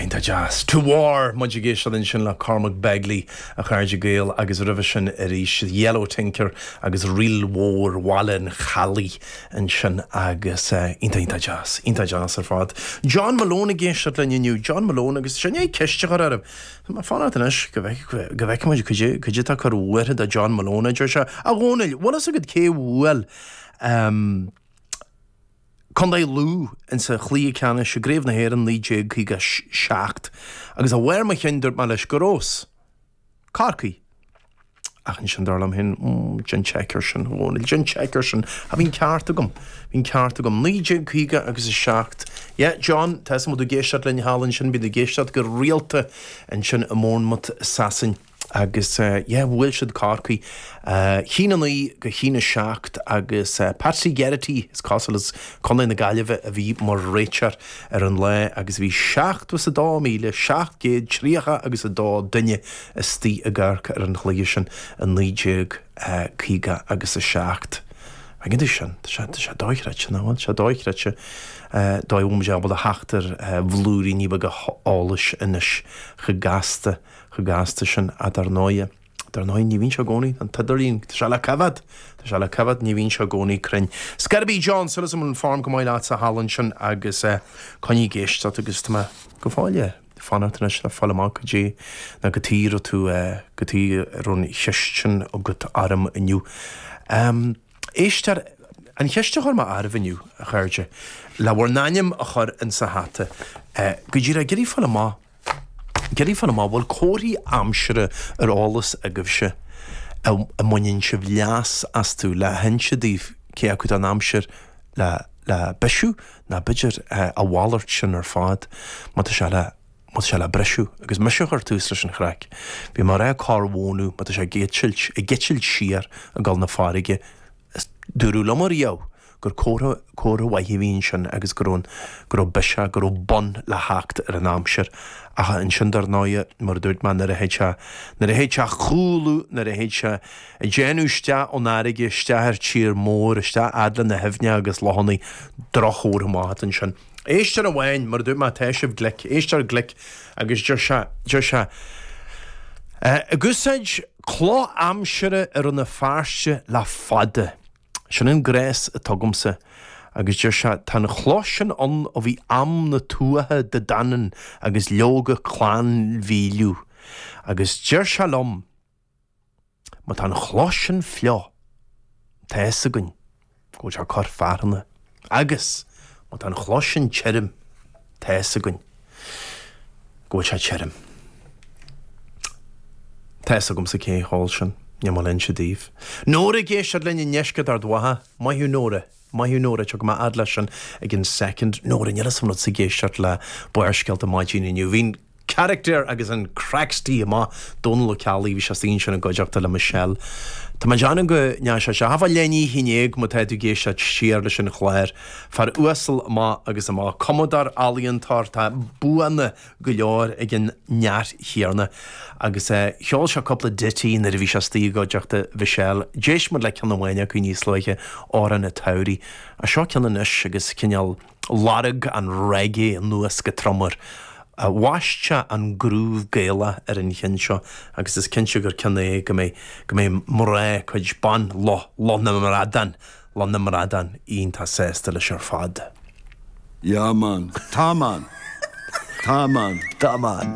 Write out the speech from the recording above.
Iontach deas. To War, muid ag éisteacht ansin le Cormac Begley, a chairde Gael, agus roimhe sin arís Yellow Tinker agus ríl mhór Bhaile an Chalaidh ansin agus iontach, iontach deas, iontach deas ar fad. John Malone ag éisteacht linn inniu, John Malone agus sin é, ceist a chur orm. Fan ort anois go bhfeicfimid caidé atá ag cur bhuartha do John Malone, a deir sé. A Dhónaill, bhfuil fhios agat cé bhuail Co. Lú insa chluiche ceannais i gCraobh na hÉireann 1957? Agus ó bharr mo chinn dúirt mé leis go raibh fhios. Corcaigh. Ach ansin dar liom fhéin, Déan seic ar sin, a Dhónaill, déan seic ar sin. Ach bhí an ceart agam. Bhí an ceart agam. Naoi déag caoga agus a seacht. Yeah, John, tá 'fhios a'm, bhí tú ag éisteacht linn thall ansin, bíonn tú ag éisteacht go rialta ansin i mBournemouth i Sasain. Agus eh, yeah, bhuail siad Corcaigh eh, cionn a naoi go cionn a seacht agus eh, Patsy Geraghty, is cosúil, as Contae na Gaillimhe a bhí mar réiteoir ar an lá agus bhí seachtó is a dó míle, seacht gcéad tríocha agus a dó duine istigh ag amharc ar an chluiche sin i 1957. An bhfeiceann tú sin? Tá sé, tá sé dochreidte, nach bhfuil? Tá sé dochreidte. Dóigh a bhfuil muid ábalta a theacht ar bhlúiríní beaga eolais anois. Chomh gasta, chomh gasta sin. Ach dar ndóighe, dar ndóighe, ní bhíonn sé i gcónaí, an t-idirlíon, tá sé le coimhead! Tá sé le coimhead, ní bhíonn sé i gcónaí cruinn. Ar scor ar bith John, súil agam go bhfuil an form go maith leatsa thall ansin agus coinnigh ag éisteacht agus tá mé go fóill. fanacht anois le fáil amach go dtí ná go dtí raibh tú go díreach an cheist sin agat orm inniu. Éisteoirí, an cheist a chuir mé oraibh inniu, a chairde, le bhur n-ainm a chur in sa hata go díreach ag iarraidh fáil amach ag iarraidh fáil amach bhfuil comharthaí aimsire ar eolas agaibhse a mbaineann sibh leas astu le hinse daoibh cé acu tá an aimsir le le bisiú Ná b'fhéidir a mhalairt sin ar fad má tá sé le, má tá sé le briseadh. Agus mise a chuir tús leis an chraic. Bhí mé a rá corr mhónadh má tá sé ag eitilt, ag eitilt siar ag gabháil 'na farraige. Is dúradh liom ariamh gur comhartha, comhartha mhaith a bhí ansin agus go raibh an, go raibh biseach, go raibh bun le theacht ar an aimsir. Ach ansin dar ndóighe, mar a dúirt mé, nuair a théid sé, nuair a théid sé a chúlú, nuair a théid sé, Ag déanamh isteach ó'n fhairrge, isteach ar tír mór, isteach fhad le na h-aibhne agus lochannaí. Droch-chomhartha amach atá ansin. Éisteoir amháin, mar a dúirt mé tá sibh glic, éisteoir glic agus deir sé, deir sé Ag úsáid cloch aimsire i Rann na Feirste le fada. Sin an gléas atá agamsa. Agus deir sé, Tá an chloch sin ann ó bhí am na Tuatha Dé Danann agus leoga Clann Mhíleadh. Agus deir sé liom. Má tá an chloch sin fliuch, tá fhios againn go bhfuil sé ag cur fearthainne, agus má tá an chloch sin tirm, tá fhios againn go bhfuil sé tirm. Tá fhios agamsa cé a cheol sin, níl mé ag inse daoibh. Nóra ag éisteacht linn i ndeisceart Ard Mhacha. Maith thú Nóra. Maith thú Nóra, tiocfaidh mé a fhad leis sin i gceann soicind. Nóra, níl fhios a'm an raibh tusa ag éisteacht le Barrscéalta maidin inniu. Bhí an. Character agus an craic istigh amach. Dónal Ó Ceallaigh, bhí sé istigh ansin i gcuideachta le Michelle. Tá mé ag déanamh go ndeanfaidh sé seo. Tabhair faill do na cinn eile má tá tú ag éisteacht siar leis an chlár. Fear uasal amach agus amach. Cumadóir, ealaíontóir, tá buanna go leor ag an neach, a thiarna. Agus cheol sé cúpla ditty nuair a bhí sé istigh i gcuideachta Mhichelle. D'éist muid le ceann amháin acu níos luaithe, Amhrán a' tSamhraidh. Seo ceann anois agus cineál. Lorg an reggae anuas go trom air. Bhaist sé an groove Gaelach ar an cheann seo agus is cinnte gur ceann é go mbeidh go mbeidh mná cuid ban Loch Loch na mBradán Loch na mBradán iontach sásta leis ar fad. Yeah man. Tá man. Tá man. Tá man.